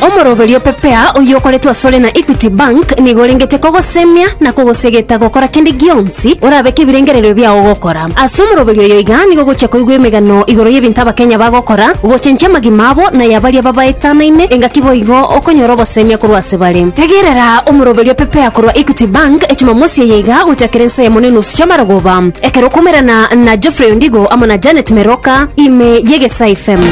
Omoroberio o Pepea oyio okoretwe asore na Equity Bank nigo orengete kogosemia na kogosegeta gokora kende gionsi orabeke ebirengererio biao gokora. Ase omoroberio oyo iga nigo ogochia koigwa emegano igoro y'ebinto Abakenya bagokora, gochenchia amagima abo na ya baria babaetanaine, engaki boigo okonyora obosemia korwa ase bare. Tegerera omoroberio o Pepea korwa Equity Bank Jumamosi eye iga gochakera ensa yamo na enusu chi'amarogoba, ekero okomerana na Geoffrey Ondigo amo na Janet Meroka ime y'Egesaa FM.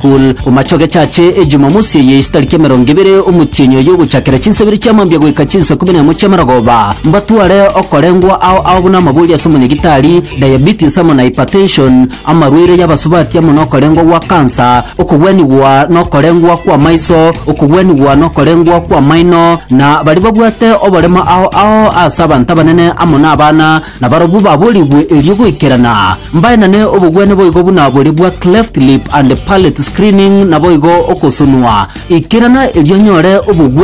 Pool, Omacho gechache e Jumamosi eye ase tariki emerongo ebere omotienyi oyo ogochakera chinsa ibere chia mambia goika chinsa ikume na emo chia marogoba, mbatware okorengwa ao ao buna amabori ase omonyegitari, diabetes amo na hypertension, amarwaire y'abasubati amo nokorengwa gwa kansa, okogwenigwa nokorengwa kw'amaiso, okogwenigwa nokorengwa kw'amaino, na baria babwate oborema ao ao ase abanto abanene amo nabana Na barabwo baboorigwe erio goikerana, mbaenane obogwene boigo buna boria bwa cleft lip and palate screening, naboigo ogosonwa. Ikerana erio onyore obogwene.